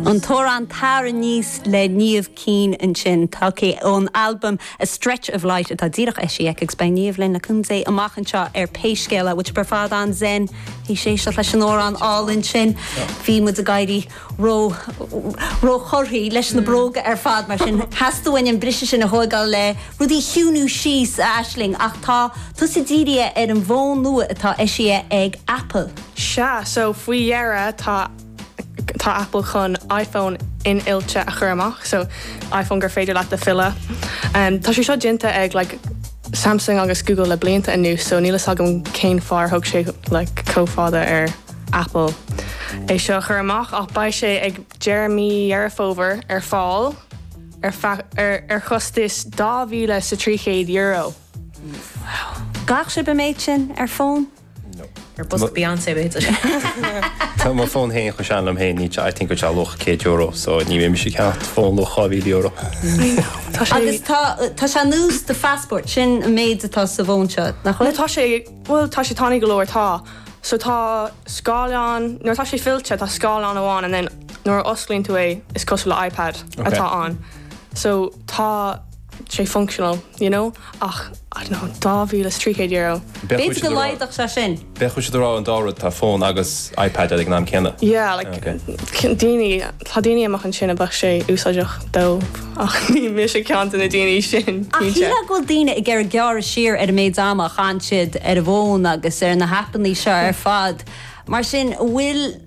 An t-amhrán 'Tar Aníos' le Niamh Keane ansin, tógtha ón albam A Stretch of Light atá díreach eisithe aici agus beidh Niamh linn le cúnamh Dé amach anseo ar pé scéal é, muid ar fad an-Zen théis éisteacht leis an amhrán álainn sin. Bhí muid ag éirí ró róchorraithe leis na bróga ar fad mar sin theastaigh uainn an briseadh sin a thóigeáil le rudaí a chiúiniú síos a Aisling ach tá tusa dírithe ar an bhfón nua atá eisithe ag Apple. Sea, so faoi dheireadh tá, tá Apple chun iPhone infhillte a chur amach, so iPhone gur féidir leat a fhilleadh. Tá sé seo déanta ag like Samsung agus Google le blianta anuas, so níl a fhios agam cén fáth ar thóg sé like chomh fada ar Apple é seo a chur amach ach beidh sé ag deireadh mí Dheireadh Fómhair ar fáil ar feadh, ar, ar chostas dhá mhíle is trí chéad euro. Wow. An gcaithfeadh sibh an méid sin ar fón? Ar bosca Beyoncé a bhí idir. Tá mo fhón féin chomh sean liom féin, ní I think go bhfuil luach €100 so níl mise ag ceannacht fón luach €2,000. I know. Tá sé Agus tá tá sé anuas do phassport, sin an méid atá sa bhfón seo, nach Nó bhfuil? tá sé, bhuel, tá sé tanaí go leor, tá. So tá scáileán, nuair atá sé fillte tá scáileán amháin and then nuair a osclaíonn tú é is cosúil le iPad atá ann. So tá. sé functional, you know, ach, I don't know, €2,300. B'fhéidir go laghdóidh sé sin. Bheadh siad ag rá an dá rud, tá fón agus iPad uilig ag an am céanna. Yeah, like, tá daoine amuigh ansin a bheadh sé úsáideach dóibh, ach ní mise ceann de na daoine sin, cinnte. Ach shílfeá go bhfuil daoine ag iarraidh gearradh siar ar an méid ama a chaitheann siad ar an bhfón agus ar na haipeanna seo ar fad, mar sin, an bhfuil.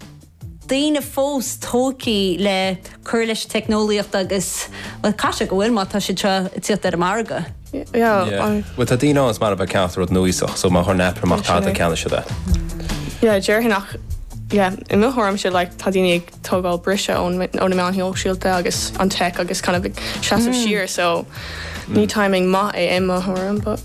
daoine fós tógtha le cur leis an teicneolaíocht agus, bhuel, caithfidh sé go bhfuil má tá siad seo ag tíocht ar an margadh. Yeah, I. Bhuel, tá daoine ann is maith leo a bheith ag ceannacht an rud nuaíoch, so má chuireann Apple amach tada, ceannóidh siad é. Yeah, déarfainn ach, yeah, i mo thuairimse like, tá daoine ag tógáil briseadh ó na meáin shóisialta agus an tech agus kind of ag seasamh siar so ní timing maith é i mo thuairim but.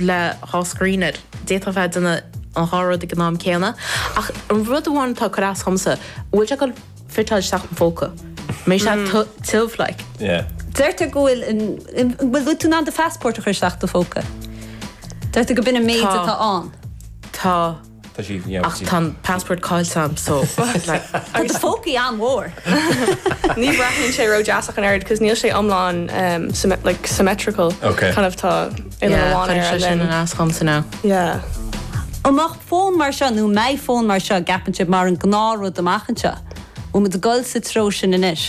le dhá scrín air. D'fhéadfadh tú a bheith ag déanamh an dhá rud ag an am céanna. Ach an rud amháin atá ag cur as dhomsa, bhfuil sé ag dul ag fiteáil isteach i mo phóca. Mbeidh sé tu tiubh like. Yeah. Deirtear go bhfuil an, bhfuil bhfuil tú in ann do phassport a chur isteach i do phóca? Deirtear go b'in an méid atá ann. Tá. Ach tá an passport cáillte agam so Tá do phócaí an-mhór! Ní bhreathnaíonn sé ró dheas ach an oiread cos níl sé iomlán like symmetrical kind of tá uillinn amháin air and then. an eas dhom so now. Yeah. An mbeadh fón mar seo nó an mbeidh fón mar seo an gceapann sibh mar an gnáth rud amach anseo? Bhfuil muid ag dul sa treo sin anois?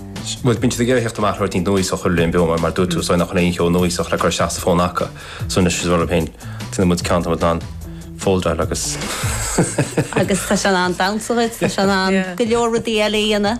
Bhuel, bíonn siad ag iarraidh a thíocht amach le rud éigin núíosach a chur linn, b'fhearr, mar dúirt tú ansin nach bhfuil aon cheo núíosach le cur isteach sa fón acu. So anois, is rud liom féin, déanfaidh muid ceann atá muid in ann foldáil agus. Agus tá sé in ann bounce usaid, tá sé in ann go leor rudaí eile a dhéanamh.